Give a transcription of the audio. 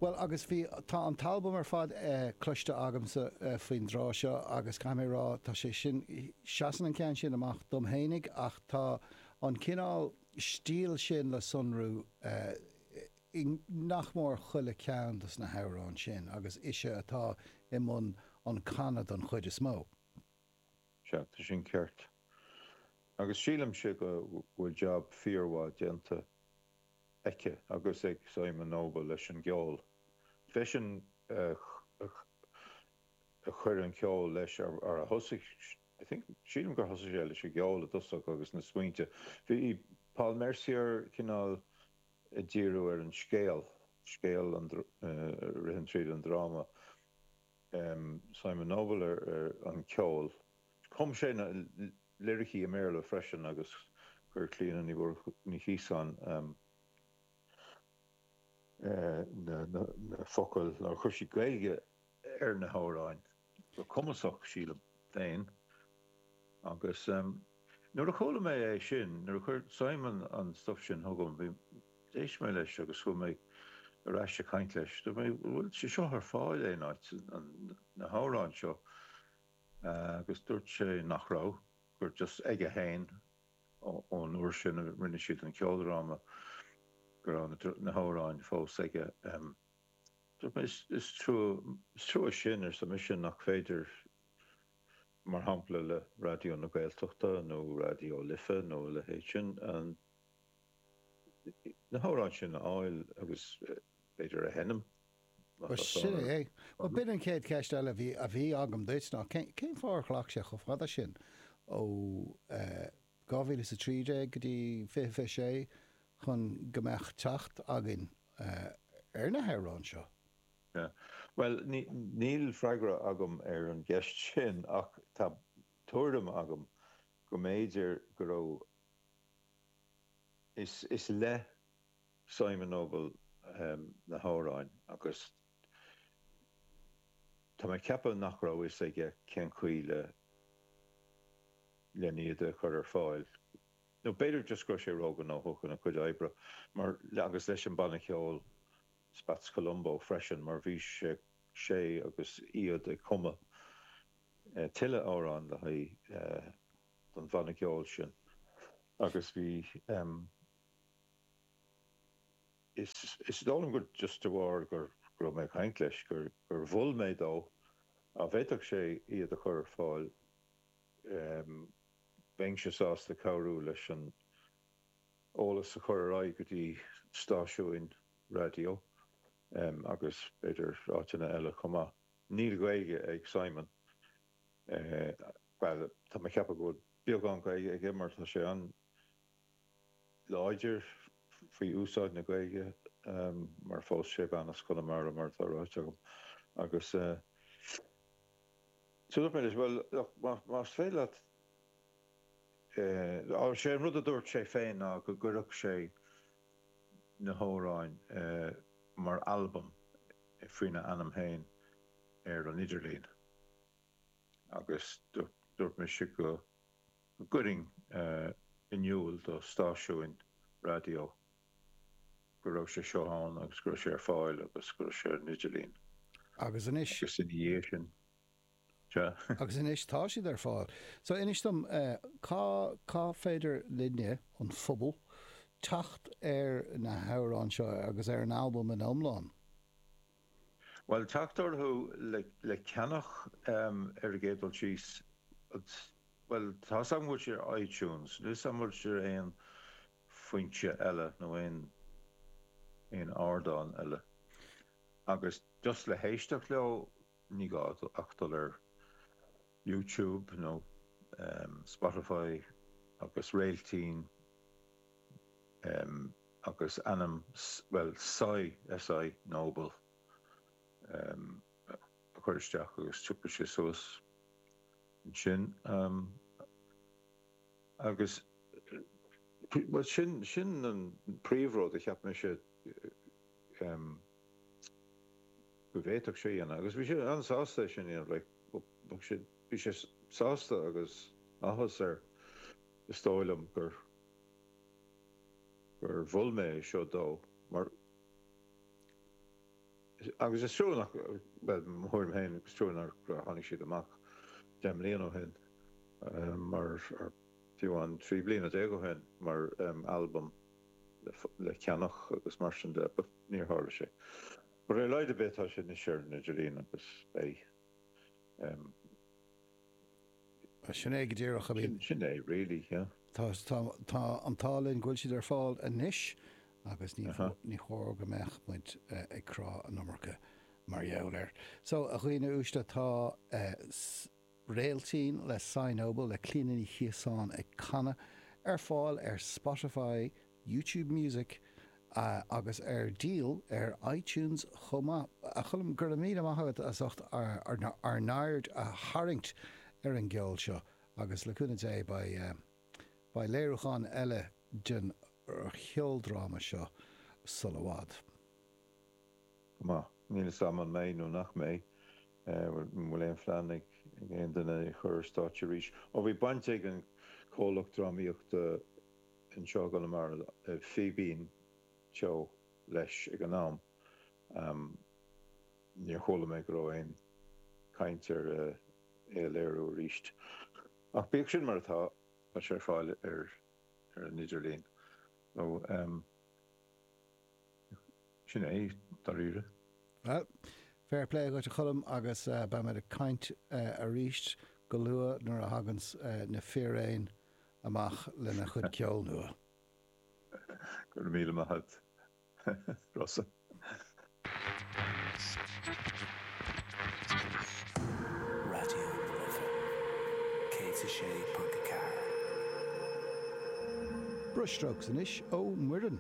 Bhuel, agus bhí, tá an t-albam ar fad cloiste agamsa faoin dtráth seo agus caithfidh mé a rá, tá sé sin, seasann an ceann sin amach dom fhéinig ach tá an cineál stíl sin le sonrú i nach mór chuile ceann as na hamhráin sin agus ise atá i mbun an chanadh don chuid is mó. Sea, tá sin ceart. Agus sílimse go bhfuil jab fíormhaith déanta. aici agus ag Simon Noble leis an gceol freisin Chuir an ceol leis ar thosaigh, sílim gur thosaigh sé leis an gceol i dtosach agus na smaointe Bhí Paul Mercier cineál ag díriú ar an scéal, scéal a ritheann tríd an dráma, Simon Noble ar an gceol Chum sé na. liricí i mBéarla freisin agus chuir Clíona Ní Chiosáin na focail, nó chuir sí Gaeilge ar na hamhráin go cumasach, sílim féin, agus nuair a chuala mé é sin, nuair a chuir Simon an stuif sin chugam, bhí, d'éist mé leis agus chuaigh mé ar ais ag caint leis, dúirt mé, bhfuil sé seo ar fáil aon áit, na hamhráin seo? agus dúirt sé nach raibh, gur just aige féin ón uair sin a rinne siad an ceoldráma go raibh na hamhráin fós aige. Dúirt mé, is trua sin, arsa mise, nach féidir, mar shampla, le Raidió na Gaeltachta nó Raidió na Life nó a leithéid sin, an. na hamhráin sin a fháil agus b'fhéidir a sheinm, má tá Sea, fonn orthu. bhuel b'in an chéad cheist eile a bhí agam duit ná cén fáth ar ghlac sé chomh fada sin ó 2013 go dtí 2026 chun go mbeadh teacht againn ar na hamhráin seo? Sea. Bhuel, níl freagra agam ar an gceist sin ach tá tuairim agam go mb'fhéidir go raibh Is le Simon Noble na hamhráin agus tá mé ag ceapadh nach raibh fhios aige cén chaoi le n-iad a chur ar fáil, nó b'fhéidir just go raibh sé róghnóthach ina chuid oibre, mar agus leis an banna ceoil Spats Colombo freisin, mar bhí sé agus iad ag cumadh tuilleadh amhrán le haghaidh don bhanna ceoil sin agus bhí em is is dóigh liom gur just de bharr gur go raibh mé ag caint leis gur gur mhol mé dó dá bhféadfadh sé iad a chur ar fáil em bheinnse sásta cabhrú leis an eolas a chur ar aghaidh go dtí stáisiúin raidió em agus b'fhéidir áiteanna eile chomh maith. Níl Gaeilge ag Simon. Bhuel, tá mé ag ceapadh go bhfuil beagán Gaeilge aige mar tá sé an-láidir faoi úsáid na Gaeilge mar phós sé bean as Conamara mar atá ráite agam agus dúirt mé leis, bhuel, más féidir leat, á, sé an rud a dúirt sé féin ná go gcuirfeadh sé na hamhráin mar albam faoina ainm féin. ar an idirlíon agus dúirt mise go gcuirfinn in iúl do stáisiúin raidió go raibh sé seo ann agus go raibh sé ar fáil agus go raibh sé ar an idirlíon. Agus anois. Agus ina dhiaidh sin. Sea. Agus anois tá siad ar fáil. So inis dom, cá féidir linne, an pobal, teacht ar na hamhráin seo agus ar an albam ina iomlán? Bhuel, teacht orthu le ceannach ar an gcéad dul síos, bhuel, tá's agam go bhfuil siad ar iTunes, níl 's agam an bhfuil siad ar aon foinse eile nó aon aon ardán eile. Agus just le héisteacht leo, ní gá ach dul ar YouTube nó Spotify agus réiltín. agus ainm bhuel Si Si Noble a chur isteach agus tiocfaidh sé suas ansin agus bhuel sin sin an príomhrud a cheap mise go bhféadfadh sé dhéanamh agus bhí sé an-sásta sin dhéanamh le bhí sé bhí sé sásta agus áthas air is dóigh liom gur gur mhol mé é seo dó mar is. agus is trua nach bhuel, mo thuairim féin, is trua nár tháinig siad amach deich mbliana ó shin nó fiú amháin trí bliana déag ó shin mar albam le ceannach agus mar sin de but níor tharla sé. But ar a laghad ar bith tá sé anois ar an idirlíon agus beidh. Sin é go díreach, I mean. Sin é really, yeah. Tá an t-ádh linn go bhfuil siad ar fáil anois agus ní chóir go mbeadh muid ag crá an iomarca mar gheall air. So, a dhaoine uaisle, tá Réiltín le Simon Noble, le Clíona Ní Chiosáin ag canadh, ar fáil ar Spotify, YouTube Music agus ar díol ar iTunes chomh maith. A Choilm, go raibh míle maith agat as ucht ár n-aird a tharraingt ar an gceol seo agus le cúnamh Dé beidh léiriúchán eile den cheoldráma seo sula i bhfad. Go maith. Níl 'fhios a'm an mbeidh nó nach mbeidh. An bhfuil aon phlean ag aon duine é a chur ar stáitse arís? Ó bhí baint ag an comhlacht drámaíochta, anseo i gConamara, Fíbín Teo leis ag an am. Níor chuala mé go raibh aon chaint ar é a léiriú arís. Ach bíodh sin mar atá, tá sé ar fáil ar an idirlíon. Nó sin é, dáiríre. Bhuel, fair play agat, a Choilm, agus beimid ag caint arís go luath nuair a thaganns na Fíréin. amach lena gcuid ceoil nua. Go raibh míle maith agat, Rossa. Raidió na Life 106.4. Brushstrokes anois ó Muireann.